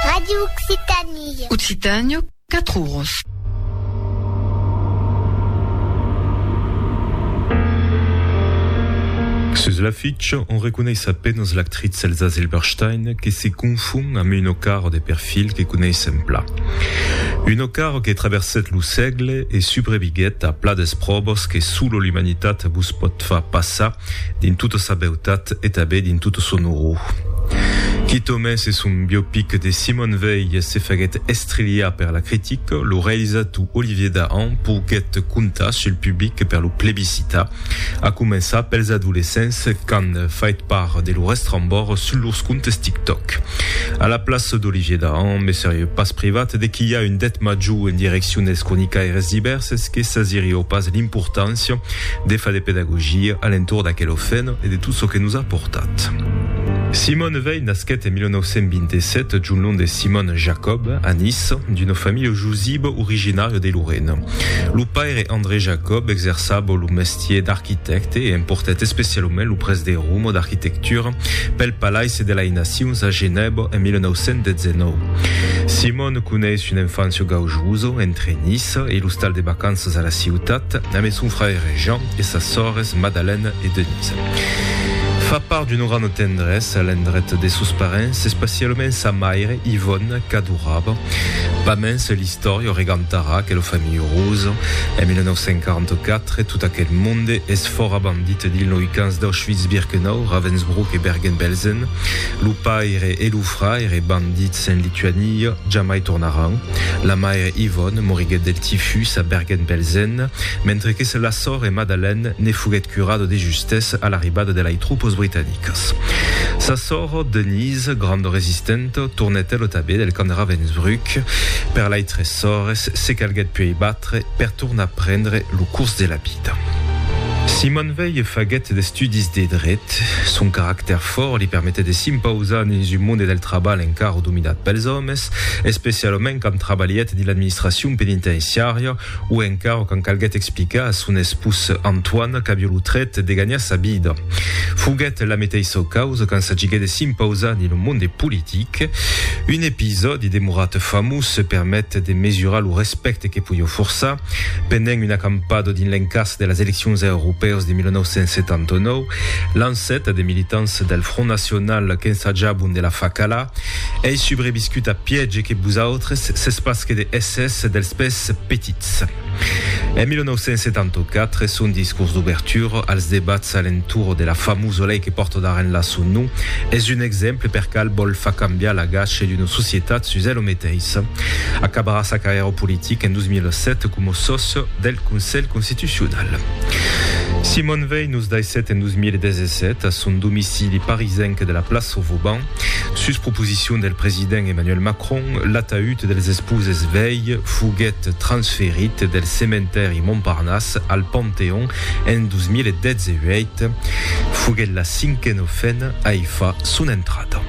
Radio Occitanie. Occitanie, 4 oros. Sus l'afitch, on reconeis a penas l'actrit Elsa Zilberstein que se confon amb un ocar de perfil que coneissem pla. Un ocar que traverset lo sègle e subreviguet a pla d'espròvas que solo l'umanitat vos pòt far passar Dins tota sa beutat e tanben dins tota son orror. Quitomai se son biopic de Simone Veil se faguèt estrilhar per la critica, lo realizator Olivier Dahan poguèt comptar sul public per lo plebiscitar, a començar pels adolescents qu'an fait part de lo restrambòrd sus lors comptes TikTok. A la plaça d'Olivier Dahan, me serieu pas privat de quilhar un det major en direccion dels cronicaires divèrses que sasirieu pas l'importància de far de pedagogia a l'entorn d'aquel ofèn e de tot çò que nos a portat. Simone Veil nasquèt en 1927, d'un nom de Simone Jacob, a Nice, d'una familha jusiva originària de Lorena. Lo paire André Jacob exerçava lo mestier d'arquitècte e emportèt especialament lo prèst de Roma d'arquitectura pel Palaisse de lai Nacions a Genèva en 1919. Simone coneis una enfància gaujosa entre Nice Lisa e l'ostal de vacanças a la ciutat amé son fraire Jean e sas sòrres Madalène e Denise. Fa part d'una granda tendresa l'endret de sos parents, especialament sa maire Ivòne qu'adorava. Pas mens l'istòria o regantarà que lo familh Rose, en 1944, tot aquel monde es fòra bandit dins loi camps d'Auschwitz-Birkenau, Ravensbrück e Bergen-Belsen, lo paire e lo fraire bandits, En Lituania jamai tornaràn. La maire Ivone moriguèt del tifus a Bergen-Belsen, mentre que se la sòrre Madalène ne foguèt curada de justès a l'arribada de lai tropas britanicas. Sa sòrre Denise, granda resistenta, tornèt ela tanben del camp de Ravensbrück. Per lai tres sòrres se calguèt puèi batre per tornar prendre lo curs de la vida. Simon Veil faguèt d'estudis de dret. Son caractèr. Fòrt li permetèt de s'impausar dins un monde del trabalh encara dominat pels òmes, especialament quand trabalhèt dins l'administracion penitenciària o encara quand calguèt explicar a son espós Antoine qu'aviá lo trèt de ganhar sa vida. Foguèt la meteissa causa quand s'agiguèt de s'impausar dins lo monde politic. Un episòdi demorat famós permet de mesurar lo respècte que podiá forçar. Pendent una acampada dins l'encàs de las eleccions aeropèus de 1979, Lancet de militants del Front Nacional qu'ensajabon de la far calar, ei subreviscut a pièg e que vosautres sètz pas que de hèsses dels pès petits. En 1974, son discors d'obertura als debats a l'entorn de la famosa lei que pòrta d'arrenhla son nom, es un exemple per cal vòl far cambiar l'agach d'una societat sus ela meteissa. Acabarà sa carrièra politica en 2007 coma sòcia. del Conselh Constitucional. Simon Veil nos daissèt en 2017, a son domicili parisenc de la plaça Vauban, sus proposicion del president Emmanuel Macron, l'ataüt dels esposes Veil foguèt transferit del cementèri Montparnasse al Panteon en 2018. Foguèt la cinquena ofena a i far son entrada.